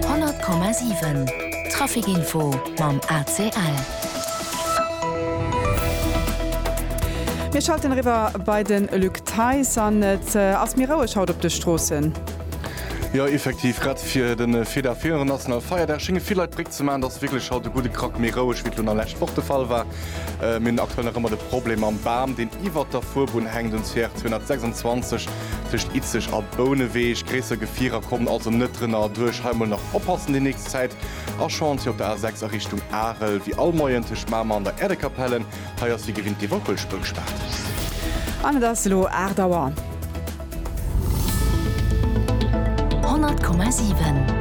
100,7 Traficinfo mam ACL. Mir schalten eriwwer bei de Luc Theis an et ass méi roueg haut op de Stroossen. Jo effektiv, grad fir de Feda Fero nationale Feierdag schénge vill Leit d'Bréck ze maachen. Et ass wierklech haut e gudde Krack méi roueg, wéi et elo nach lescht Woch de Fall war. Mir hunn aktuell nach ëmmer de Problem mam Bam, deen iwwert der Fuerbunn hänkt, um CR 226. Tëscht Itzeg a Bouneweg, gréisser Gefierer kommen also net drënner erduerch. Hei mol nach oppassen déi nächst Zäit. A Chantier op der A6 a Richtung Arel, wéi all Moien tëscht Mamer an der Äerdekapelle. Hei ass wéi gewinnt déi Wackelspur gespaart. An et ass elo 8 Auer. 100,7.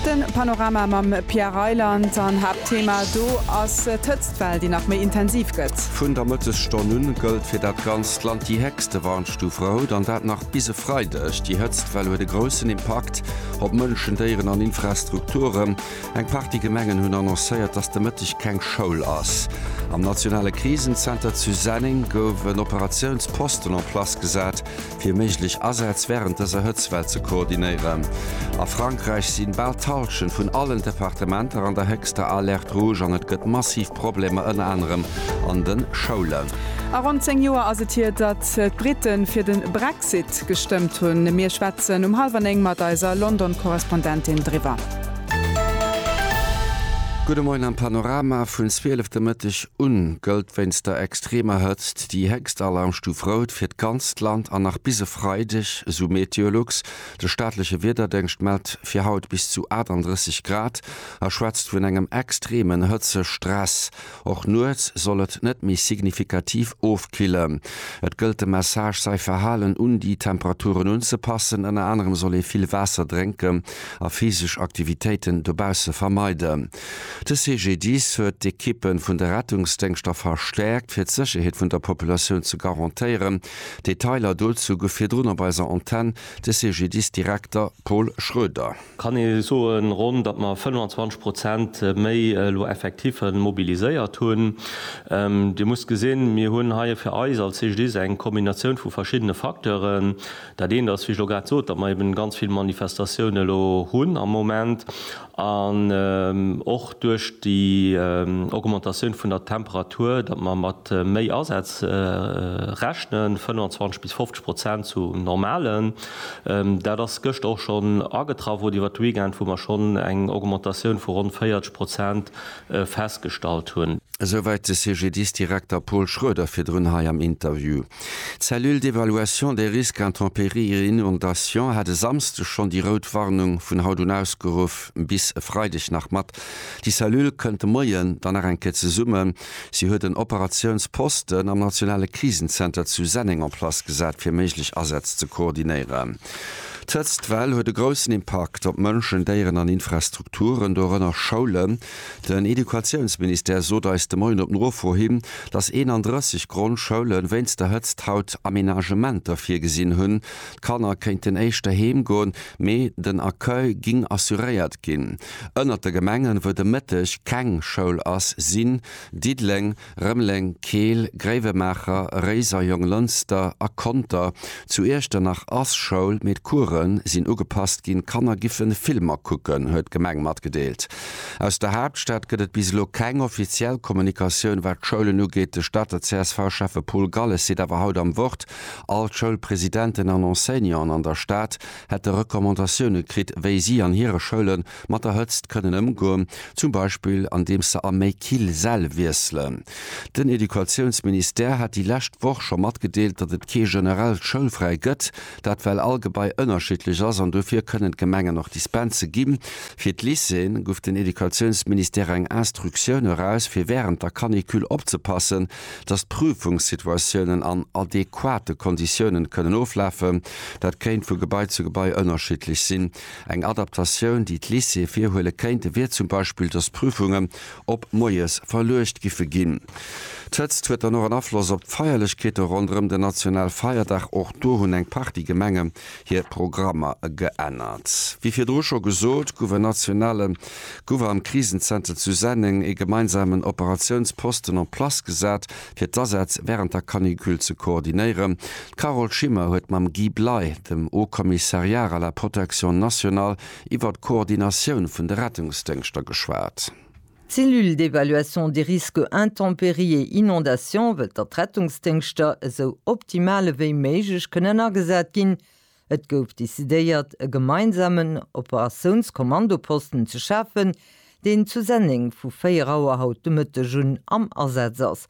De Panorama mam Pierre Reyland. An Haaptthema do ass d'Hëtzt. D'Well, déi nach méi intensiv gëtt. Vun der Mëttesstonn un gëllt fir dat ganzt Land déi héchste Warnstuferout, an dat nach bis e Freideg. Déi Hëtztwell huet e groussen Impakt op Mënschen, Déieren an Infrastrukturen. Eng Partie Gemengen hunn annoncéiert, dass de Mëtteg keng Schoul ass. Am nationale Krisenzenter zu Senneng gouf en Operatiounsposten en place gesat. fir méiglech Asätz wärend dëser Hëtztwell ze koordinéieren. A Frankräich si bal d'Hallschent vun allen Departementer an der héchster Alerte rouge an et gëtt massiv Problemer ënner anerem an de Schoulen. A ronn 10 Joer ass et hier, datt d'Britten fir den Brexit gestëmmt hunn. Mir schwätzen um halwer 9 mat eiser London-Korrespondentin driwwer. Gudde Moien am Panorama. Vun 12 de Mëtteg un gëllt wéinst der extremer Hëtzt, Déi héchst Alarmstuf rout fir d'ganzt Land an nach bis e Freideg, esou Meteolux. De staatleche Wiederdéngscht mellt fir haut bis zu 38 Grad a schwätzt vun engem extremen Hëtzestress. Och nuets soll et net méi signifikativ ofkillen. Et gëllt de Message, säi Verhalen un déi Temperaturen unzepassen. Ënner anerem soll ee vill Waasser drénken a physesch Aktivitéiten dobausse vermeiden. De CGDIS huet d'Ekippe vun de Rettungsdéngschter verstäerkt, fir d'Sécherheet vun der Populatioun ze garantéieren. Detailer dozou gouf virdrun op eiser Antenn de CGDIS-Direkter Paul Schroeder. Kann ee soen, ronn, datt mer 25 Prozent méi elo Effektiffe mobiliséiert hunn. Dir musst gesinn, mir hunn hei fir eis als CGDIS eng Kombinatioun vu verschiddene Facteuren. Dat eent ass, wéi ech elo grad sot, datt mer eben ganz vill Manifestatioune elo hunn am Moment. An och duerch déi Augmentatioun vun der Temperatur, datt mer mat méi Asätz rechnen, 25 bis 50 Prozent zu normalen. Dat ass gëschter och schonn agetraff oder iwwert de Weekend, wou mer schonn eng Augmentatioun vu ronn 40 Prozent festgestallt hunn. Esouwäit de CGDIS-Direkter Paul Schroeder virdrun hei am Interview. D'Cellule d'évaluation des risques intempéries et inondations hat e Samsde schonn déi rout Warnung vun haut un ausgeruff bis e Freideg nach mat. Déi Cellule kënnt de Moie dann nach eng Kéier zesummen. Si huet en Operatiounsposten am nationale Krisenzenter zu Senneng en place gesat, fir méiglech Asätz ze koordinéieren. D'Hëtztwell huet e groussen Impakt op Mënschen, Déieren an Infrastrukturen, dorënner Schoulen. Den Educatiounsministère sot eis de Moien op Nofro hin, datt 31 Grondschoule wéinst der Hëtzt haut Amenagementer virgesinn hunn. D'Kanner kéinten éischter heem goen, mee den Accueil géing assuréiert ginn. Ënnert de Gemengen, wou de Mëtteg keng Schoul ass, sinn Diddeleng, Rëmeleng, Keel, Gréiwemaacher, Réiser, Jonglënster a Conter. Zu Iechternach ass Schoul, mee d'Coure sinn ugepasst ginn. D'Kanner giffe Filmer kucken, huet d'Gemeng matgedeelt. Aus der Haaptstad gëtt et bis elo keng offiziell Kommunikatioun, wat d'Schoulen ugeet. De Stater CSV-Schäffe Paul Galles seet awer haut am Wort, all d'Schoulpresidenten an Enseignanten an der Stad hätte Recommandatioune kritt, wéi si an hire Schoule Mat der Hëtzt kënnen ëmgoen, zum Beispill andeems se a méi kill Säll wiesselen. Den Educatiounsministère hat déi lescht Woch scho matgedeelt, datt et kee generellt Schoulfräi gëtt, dat well all Gebai ënnerschiddlech ass an dofir kënnen d'Gemengen och Dispense gi. Fir d'Lycéeën guff den Educatiounsministère eng Instructioun eraus fir wärend der Canicule opzepassen, datt d'Prüfungssituatiounen an adequate Konditiounen kënnen oflafen. Dat kéint vu Gebai zu Gebai ënnerschiddlech sinn. Eng Adaptatioun, déi d'Lycéeë virhuele kéinte, wier zum Beispill, datt d'Prüfungen op moies verluecht giffe ginn. D'Hëtzt huet dann och en Afloss op d'Feierlechkeete ronderëm den Nationalfeierdag. Och do hunn eng Partie Gemenge hir Programmer geännert. Wéi virdru scho gesot, gouf en nationale Gouv am Krisenzenter zu Senneng ee gemeinsamen Operatiounsposten en place gesat, fir d'Asätz wärend der Canicule ze koordinéieren. D'Carole Schimmer huet mam Guy Bley, dem Haut Commissariar à la protection nationale, iwwer d'Koordinatioun vun de Rettungsdéngschter geschwat. D'Cellule d'évaluation des risques intempéries et inondations wëllt, datt d'Rettungsdéngschter esou optimal ewéi méiglech kënnen agesat ginn, Et gouf decidéiert, e gemeinsamen Operatiounskommandoposten ze schafen, deen zu Senneng vu 4 Auer haut de Mëtteg un am Asaz ass.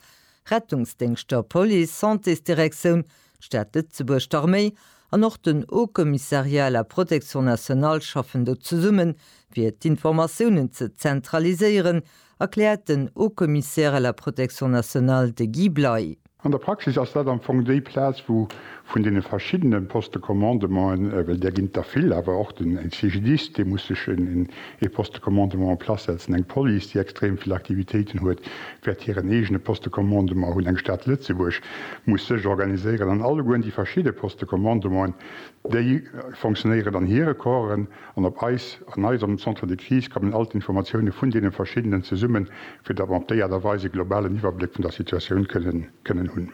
Rettungsdéngschter, Police, Santésdirektioun, d'Stad Lëtzebuerg, d'Arméi an och den Haut Commissariat à la Protection Nationale schaffen do zesummen, fir d'Informatiounen ze zentraliséieren Erkläert den Haut-Commissaire à la protection nationale, de Guy Bley. An der Praxis ass dat am Fong déi Plaz, wou vun deene verschiddene Postes de commandement, well där ginn et der vill, awer och den CGDIS, dee muss sech ee Poste de commandement en place setzen, eng Police, déi extrem vill Aktivitéiten huet, wäert hiren eegene Poste de commandement hunn, eng Stad Lëtzebuerg muss sech organiséieren an allegueren déi verschidde Postes de commandement, déi fonctionnéieren an hire Corpsen. An op eis, an eiserem Centre de Crise kommen all d'Informatioune vun deene verschiddenen zesummen, fir datt mer op déi Aart a Weis e globalen Iwwerbléck vun der Situatioun kënnen hunn.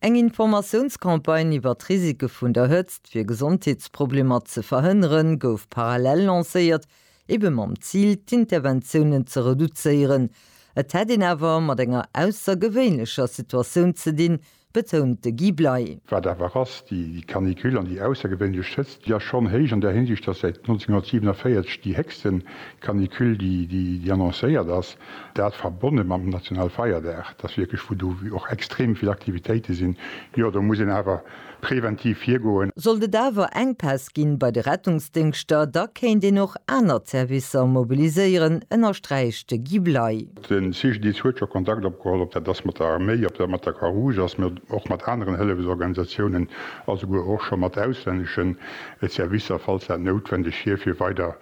Eng Informatiounscampagne iwwer d'Risike vun der Hëtzt, fir Gesondheetsproblemer ze verhënneren, gouf parallel lancéiert, ebe mam Zil, d'Interventiounen ze reduzéieren. Et hätt een awer mat enger aussergewéinlecher Situatioun ze dinn, betount de Guy Bley. Wat awer ass déi Canicule an déi aussergewéinlech Hëtzt? Jo, schonn héich an där Hinsicht, dass säit 1947 déi héchste Canicule déi annoncéiert ass, dat verbonne mam Nationalfeierdag, dass wierklech vu do och extrem vill Aktivitéite sinn. Jo, do muss een awer preventiv virgoen. Sollt et awer Enkpäss gi bei de Rettungsdéngschter, da kéint een och aner Servicer mobiliséieren, ënnersträicht de Guy Bley. De CGDIS huet scho Kontakt opgeholl, ob dat ass mat der Arméi, ob dat mat der Croix-Rouge ass, mee och mat aneren Hëllefsorganisatiounen a souguer och scho mat auslännesche Servicer, falls dat noutwendeg wier, fir weider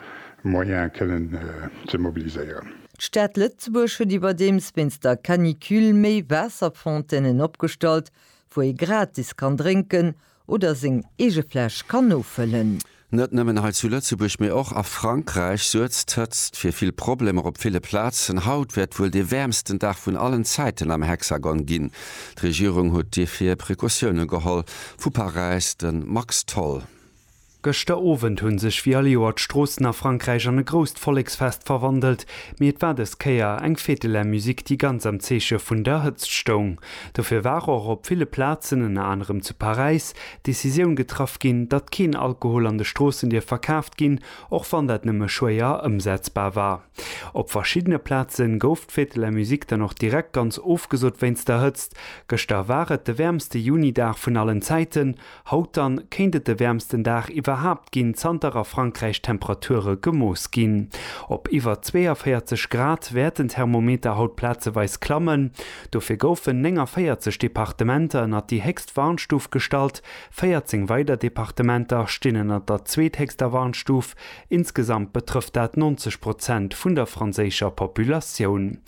Moyene kënnen ze mobiliséieren. D'Stad Lëtzebuerg huet iwwerdeems wéinst der Canicule méi Waasserfontainen opgestallt, wou ee gratis kann drénken, Oder seng eege Fläsch kann nofëllen. Net nëmmen hei zu Lëtzebuerg, mee och a Frankräich suergt d'Hëtzt fir vill Problemer op ville Plazen. Haut wäert wuel de wäermsten Dag vun allen Zäiten am Hexagon ginn. D'Regierung huet dofir Precautioune geholl, vu Paräis de Max Tholl. Gëschter Owend hunn sech wéi all Joer d'Stroossen a Frankräich an e grousst Volleksfest verwandelt, mee et war dës Kéier eng Fête de la Musique déi ganz am Zeeche vun der Hëtzt stoung. Dofir war och op ville Plazen, ënner anerem zu Paräis, d'Decisioun getraff ginn, datt keen Alkohol an de Stroossen dierf verkaaft ginn, och wann dat nëmme schwéier ëmsetzbar war. Op verschiddene Plaze gouf d'Fête de la Musique dann och direkt ganz ofgesot wéinst der Hëtzt. Gëschter war et de wäermste Juni-Dag vun allen Zäiten. Haut dann kéint et de wäermsten Dag iwwerhaapt ginn, zanter a Frankräich d'Temperature gemooss ginn. Op iwwer 42 Grad wäerten d'Thermometer haut plazeweis klammen. Dofir goufen 49 Departementer ënnert déi héchst Warnstuf gestallt, 14 weider Departementer stinn ënnert der zweethéchster Warnstuf. Insgesamt betrëfft dat 90 Prozent vun der franséischer Populatioun.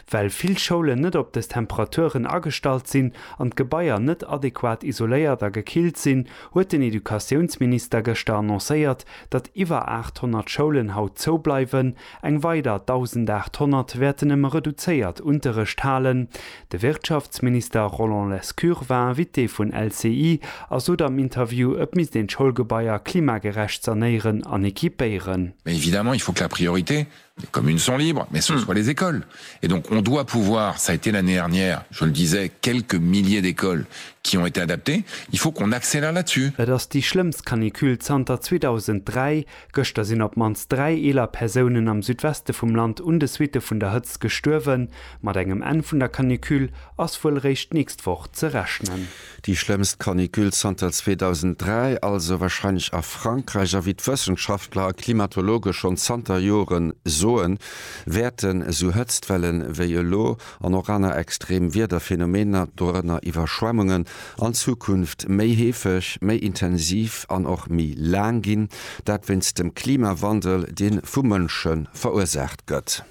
Well vill Schoulen net op des Temperaturen agestallt sinn, an d'Gebaier net adequat isoléiert a gekillt sinn, huet den Educatiounsminister gëschter annoncéiert, datt iwwer 800 Schoulen haut zoubleiwen, eng weider 1.800 wäerten nëmme reduzéiert Unterrecht halen. De Wirtschaftsminister Roland Lescure war Invité vun LCI a sot am Interview, et misst een d'Schoulgebaier klimagerecht sanéieren an equipéieren. Mais évidemment, il faut que la priorité Les communes sont libres, mais ce soit les écoles. Et donc, on doit pouvoir, ça a été l'année dernière, je le disais, quelques milliers d'écoles qui ont été adaptées, il faut qu'on accélère là-dessus. Et ass déi schlëmmst Canicule zanter 2003. Gëschter sinn op d'mannst dräi eeler Persounen am Südweste vum Land un de Suitte vun der Hëtzt gestuerwen. Mat engem Enn vun der Canicule ass wuel eréischt d'nächst Woch ze rechnen. Déi schlëmmst Canicule zanter 2003 also wahrscheinlech a Frankräich, a wéi d'Wëssenschaftler a Klimatologe schonn zanter Jore soen, wäerten esou Hëtztwelle wéi elo an och aner extrem Wiederphenomener, dorënner Iwwerschwemmungen, an Zukunft méi heefeg, méi intensiv an och méi laang ginn. Dat wéinst dem Klimawandel, dee vu Mënsche verursaacht gëtt.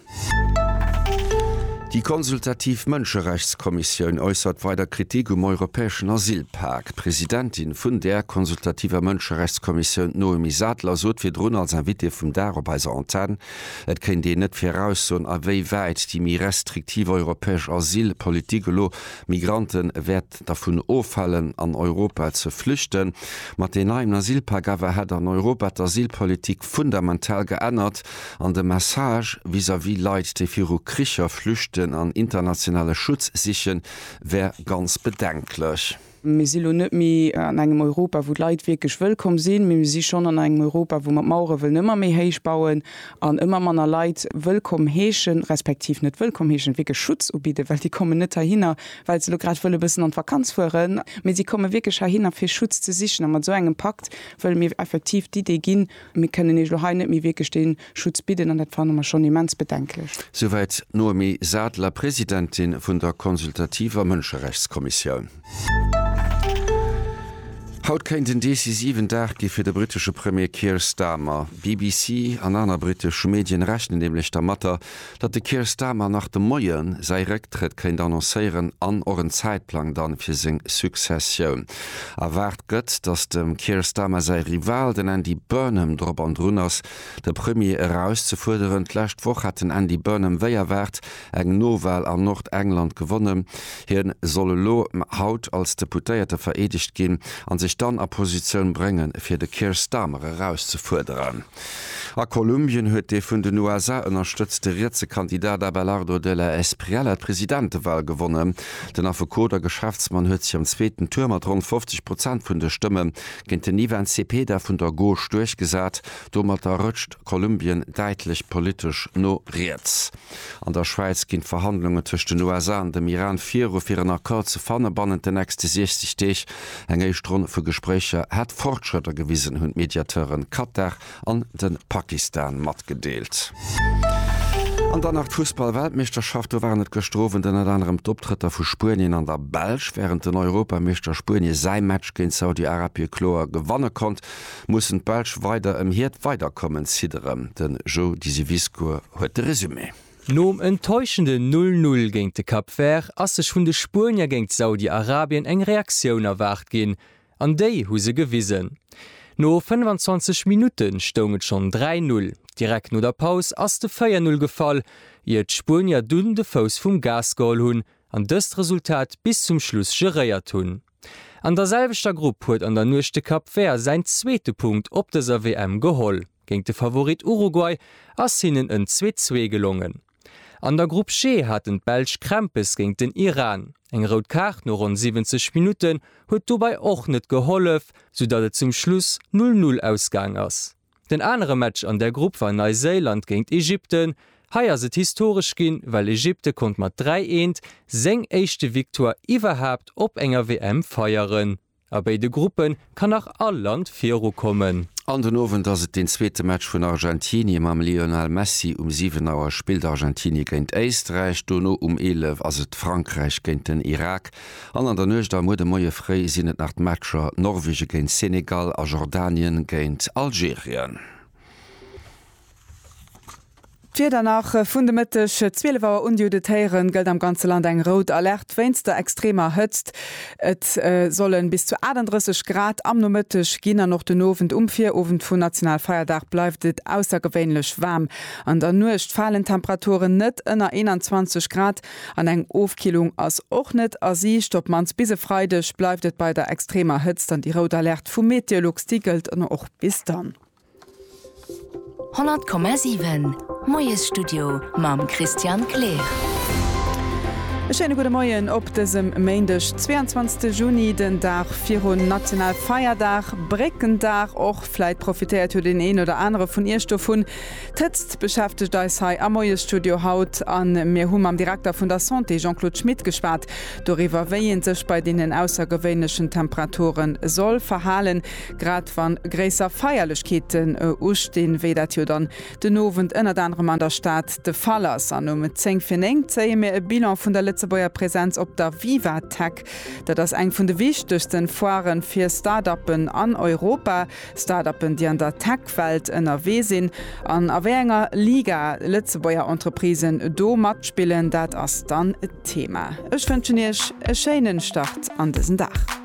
Déi consultativ Mënscherechtskommissioun äussert weider Kritik um europäeschen Asylpak. D'Presidentin vun där consultativer Mënscherechtskommissioun, d'Noémie Sadler, sot virdrun als Invitée vum Dag op eiser Antenn, et kéint een net viraussoen, awéiwäit déi méi restriktiv europäesch Asylpolitik elo Migrante wäert Staat dervun ofhalen an Europa ze flüchten. Mat den neien Asylpak awer hätt an Europa d'Asylpolitik fundamental geännert an de Message vis-à-vis Leit déi viru Kricher flüchten an internationale Schutz sichen wär ganz bedenklech. Mir si lo net méi an engem Europa wou d'Leit wierklech wëllkomm sinn, mee mir si schonn an engem Europa wou mer d'Mauere wëllen ëmmer méi héich bauen an ëmmer manner Leit wëllkomm heeschen, respektiv net wëllkomm heeschen, wierklech Schutz ubidden, well déi kommen net heihinner well se elo grad wëlle bëssen an d'Vakanz fueren, mee si komme wierklech heihinner fir Schutz ze sichen. A mat esou engem Pakt wëlle mir effektiv d'Idee ginn, mir kënnen iech elo hei net méi wierklech dee Schutz bidden an dat fanne mer schonn immens bedenklech. Souwäit d'Noémie Sadler, Presidentin vun der consultativer Mënscherechtskommissioun. Haut kéint en decisiven Dag gi fir de brittesche Premier Keir Starmer. BBC an aner brittesch Medien rechnen nämlech dermatter, datt de Keir Starmer nach de Moie säi Récktrëtt kéint annoncéieren an och en Zäitplang dann fir seng Successioun. Erwaart gëtt, datt dem Keir Starmer säi Rival, den Andy Burnham, drop an drun ass, de Premier erauszefuerderen. D'lescht Woch hat den Andy Burnham wéi erwaart eng Nowal an Nordengland gewonnen. Hie soll elo haut als Deputéierte vereedegt ginn a sech dann a Positioun bréngen, fir de Keir Starmer erauszefuerderen. A Kolumbien huet dee vun den USA ënnerstëtzte rietse Kandidat Abelardo de la Espriella d'Presidentewal gewonnen. Den Affekot a Geschäftsmann huet sech am zweeten Tour mat ronn 50 Prozent vun de Stëmme géint den Ivan Cepeda vun der Gauche duerchgesat. Domatter rëtscht Kolumbien däitlech politesch no riets. An der Schwäiz ginn d'Verhandlungen tëscht den USA an dem Iran viru fir en Accord ze fanne bannent den nächste 60 Deeg. Eng éischt Ronn vu Gespréicher hätt Fortschrëtter gewisen, hunn d'Mediateuren Katar an de Pakistan matgedeelt. An dann nach d'Fussball-Weltmeeschterschaft. Do waren et gëschter Owend ënnert anerem d'Optrëtter vu Spuenien an der Belsch. Wärend den Europameeschter Spuenie säi Match géint Saudi-Arabie kloer gewanne konnt, mussen d'Belsch weider ëm hiert Weiderkommens hidderen. De Joe Disiviscourt huet de Resumé. Nom enttäuschenden Null Null géint de Cap Vert ass sech vun de Spuenier géint Saudi-Arabien eng Reaktioun erwaart ginn, an déi hu se gewisen. No 25 Minutte stoung et schonn 3 Null. Direkt no der Paus ass de 4 Null gefall, ier d'Spuenier dunn de Fouss vum Gas geholl hunn an dëst Resultat bis zum Schluss geréiert hunn. An der selwechter Grupp huet an der Nuecht de Cap Vert säin zweete Punkt op dëser WM geholl. Géint de Favorit Uruguay ass hinnen en Zweezwee gelongen. An der Grupp G haten d'Belsch Krämpes géint den Iran. Eng rout Kaart no ronn 70 Minutten huet dobei och net gehollef, soudatt et zum Schluss Null-Null ausgaang ass. Den anere Match an der Grupp war Neiséiland géint Ägypten. Hei ass et historesch ginn, well Ägypte konnt mat 3 eent seng éischte Victoire iwwerhaapt op enger WM feieren. A béide Gruppe kann nach all Land virukommen. An den Owend ass et deen zweete Match vun Argentinie mam Lionel Messi. Um 7 Auer spillt Argentinie géint Éisträich. Dono um 11 ass et Frankräich géint den Irak. An an der Nuecht a muer de Moie fréi sinn et nach d'Matcher Norwegen géint Senegal a Jordanien géint Algerien. D'Wieder nach, Vun de Mëtteg 12 Auer un Diou de Téieren gëllt am ganze Land eng rout Alerte wéinst der extremer Hëtzt. Et solle bis zu 38 Grad am Nomëtteg ginn an och den Owend. Um Virowend vun Nationalfeierdag bleift et aussergewéinlech waarm. An der Nuecht falen d'Temperaturen net ënner 21 Grad. An eng Ofkillung ass och net a Siicht. Op d'mannst bis e Freideg bleift et bei der extremer Hëtzt an déi rout Alerte vu Meteolux, déi gëllt och bis dann. 100,7 Moiesstudio mam Christian Kleer. E schéine gudde Moien op dësem Méindeg, 22 Juni, den Dag virun Nationalfeierdag, Bréckendag och. Vläit profitéiert jo deen een oder anere vun Iech dovun. D'Hëtzt beschäftegt eis hei am Moiesstudio haut a mir hu mam Direkter vun der Santé Jean-Claude Schmit geschwat doriwwer, wéi ee sech bei deenen aussergewéinlechen Temperature soll verhalen, grad wa gréisser Feierlechkeeten ustinn, wéi dat jo dann den Owend ënnert anerem an der Stad de Fall ass. An um zéng fir néng zéie mir e Bilan vun der Lëtzebuerger Präsenz op der Viva-Tech. Dat ass eng vun de wichtegsten Foiren fir Start-Uppen an Europa. Startuppen, déi an der Tech-Welt ënnerwee sinn, an a wéi enger Liga Lëtzebuerger Entreprisen do matspillen, dat ass dann d'Thema. Ech wënschen Iech e schéinen Start an dësen Dag.